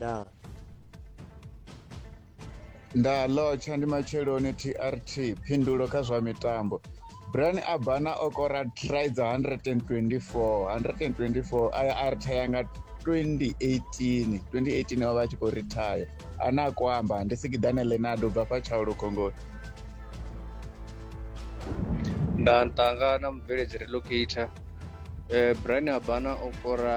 naa nda lotsha ndi matsheloni trt phindulo kha zwa mitambo brian abana o kora try dza 124 124 aya a rithaya nga 2018 2018 o vha a tshi khou rithaya ane a kho amba ndi sikidane lenado bva fha tshaulu khongoni nda ntanga na mubveledzi relocator eh, brian abana o kora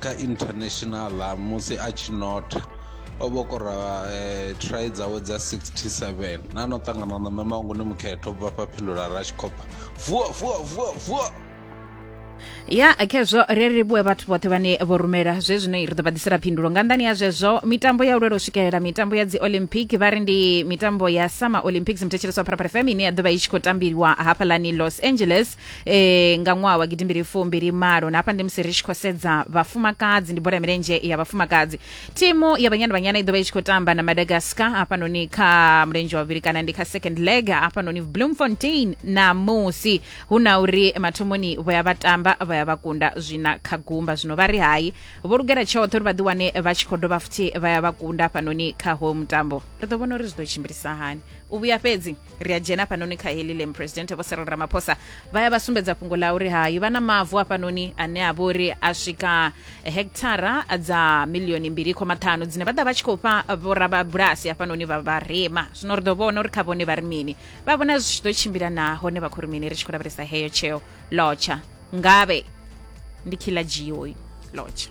kha international musi a tshi notha o vhokora eh, try dzawe dza 67 na no ṱangana na mme mangu ni mukhetho bva fha phindula ra tshi khopha vuwa vuwa vuwa vuwa ya khezwo ri ri vhuwe vhathu vhoṱhe vhane vho rumela zwe zwino ri ḓo vha ḓisela phindulo nga nḓani ya zwezwo mitambo ya u lwela u swikelela mitambo ya dzi olympic vha ri ndi mitambo ya summer olympics muthetshelesi wa pharapara fm ine ya ḓo vha i tshi khou tambiliwa hafhaḽani los angeles e, nga ṅwaha wa gidimbili fumbili malo na hafha ndi musi ri tshi khou sedza vhafumakadzi ndi bola ya milenzhe ya vhafumakadzi thimu ya banyana banyana i ḓo vha i tshi khou tamba na madagascar hafhanoni kha mulenzhe wa vhuvhili kana ndi kha second leg hafhanoni bloemfontein namusi hu na uri mathomoni vho ya vha tamba vha ya vha kunda zwina kha gumba zwino vha ri hai vho lugela tshoṱhe uri vha ḓi wane vha tshi khou dovha futhi vha ya vha kunda hafhanoni kha hoyo mutambo ri ḓo vhona uri zwi ḓo tshimbilisa hani u vhuya fhedzi ri a dzhena hafhanoni kha heḽi lem presidente vho serel ramaphosa vha ya vha sumbedza fhungo ḽa uri hayi vha na mavu hafhanoni ane a vha uri a swika hekithara dza milioni mbili khoma ṱhanu dzine vha ḓa vha tshi khou fha vhorababulasi hafhanoni vha vharema zwino ri ḓo vhona uri kha vhone vha ri mini vha vhona zwi tshi ḓo tshimbila na hone vha khou ri mini ri tshi khou lavhelesa heyo tsheo lotsha ngavhe ndi khiḽa dzhio lotsha